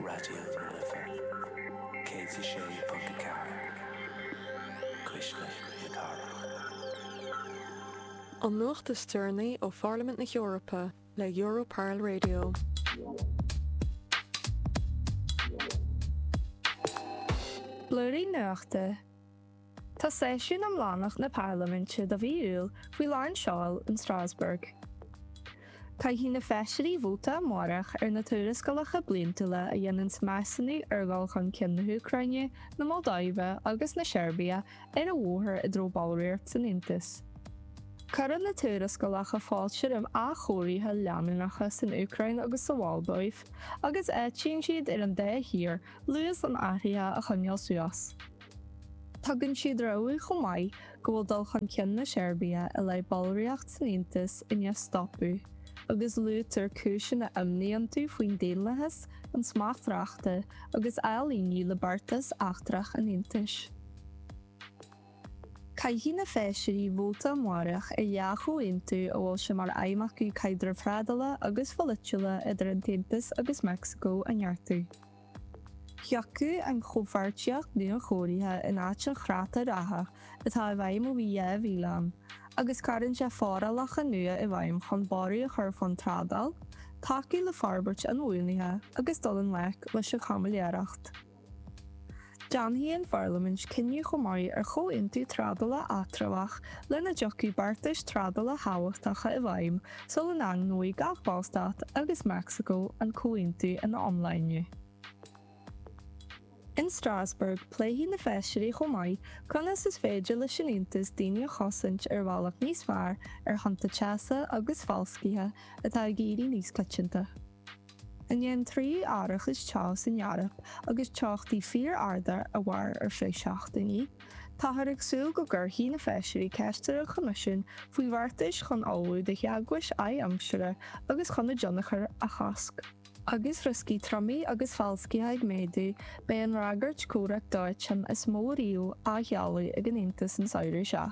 Raidió na Life 106.4 Cuisle na Cathrach. An nuacht is deireanaí ó Pharlaimint na hEorpa le Europarl Radio. Blúirín Nuachta. Tá seisiún iomlánach na Parlaiminte do mhí Iúil faoi lán seoil in Strasbourg. Caithfidh na Feisirí vóta amárach ar na tuarascálacha bliantúla a dhéananns measúnú ar dhul chun cinn na hÚcráine, na Moldáive agus na Seirbia ar a mbóthar i dtreo ballraíocht san Aontas. Cuireann na tuarascálacha fáilte roimh athchóirithe leanúnacha san Úcráin agus sa Mholdóiv agus áitíonn siad ar an dá thír luas na n-athruithe a choinneáil suas. Tugann siad rabhadh chomh maith go bhfuil dul chun cinn na Seirbia i leith ballraíocht san Aontas i ndiaidh stopadh agus luaitear cúiseanna imní iontu faoin daonlathas, an smacht reachta agus ailíniú le beartas eachtrach an Aontais. Caithfidh na Feisirí vóta amárach ar dhá chomhaontú a bhfuil sé mar aidhm acu caidreamh thrádála agus polaitiúil idir an tAontas agus Meicsiceo a neartú. Thiocfadh an chomhpháirtíocht nuachóirithe in áit an chreata reatha atá i bhfeidhm ó bhí 2000 ann agus cuireann sé forálacha nua i bhfeidhm chun borradh a chur faoin trádáil, tacú le forbairt inbhuanaithe agus dul i ngleic leis an chaimiléireacht. Déanfaidh an Pharlaimint cinneadh chomh maith ar chomhaontú trádála eatramhach lena dtiocfaidh beartais trádála thábhachtacha i bhfeidhm sula ndaingneoidh gach Ballstát agus Meicsiceo an comhaontú ina iomláine. In Strasbourg, pléifidh na Feisirí chomh maith conas is féidir leis an Aontas daoine a chosaint ar bhealach níos fearr ar thonnta teasa agus falscaithe atá ag éirí níos coitianta. I ndiaidh trí ráig teasa san Eoraip agus teochtaí fíor-arda a mhair ar feadh seachtainí, táthar ag súil go gcuirfidh na Feisirí ceist ar an Choimisiún faoi bheartais chun ullmhú do theagmhais adhaimsire agus chun a dtionchar a chosc. Agus rioscaí triomaigh agus falscaithe ag méadú, beidh an fhreagairt comhraic dóiteáin is mó riamh á sheoladh ag an Aontas an samhradh seo.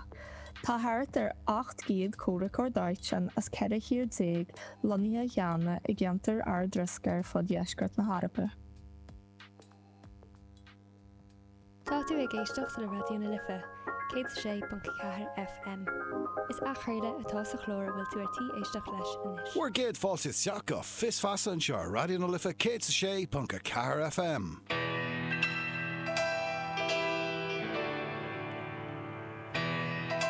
Tá thart ar 800 comhraiceoir dóiteáin as 14 thír lonnaithe cheana i gceantair ardriosca ar fud dheisceart na hEorpa. Tá tú ag éisteacht le Raidió na Life, 106.4 FM. Is athchraoladh atá sa chlár a bhfuil tú ar tí éisteacht leis anois. Bhur gcéad fáilte isteach go Fios Feasa anseo ar Raidió na Life 106.4 FM.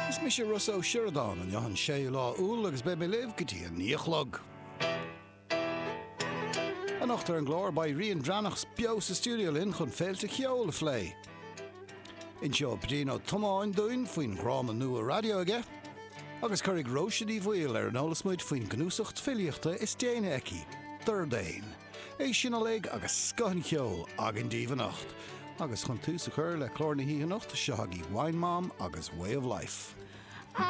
Is mise Rossa Ó Sioradáin, an dáta an 6 lá Iúil agus beidh mé libh go dtí an naoi a chlog. Anocht ar an gclár beidh Rian Drannach beo sa stiúideo linn chun féilte cheoil a phlé. Inseoidh Brian Ó Tiomáin dúinn faoin dhráma nua raidió aige agus cuirfidh Róise Ní Bhaoill ar an eolas muid faoin gcnuasacht filíochta is déanaí aici, Dordáin. É sin uilig agus scoth an cheoil againn daoibh anocht. Agus chun tús a chur le clár na hoíche anocht, seo chugaibh Wine Mom agus Way of Life.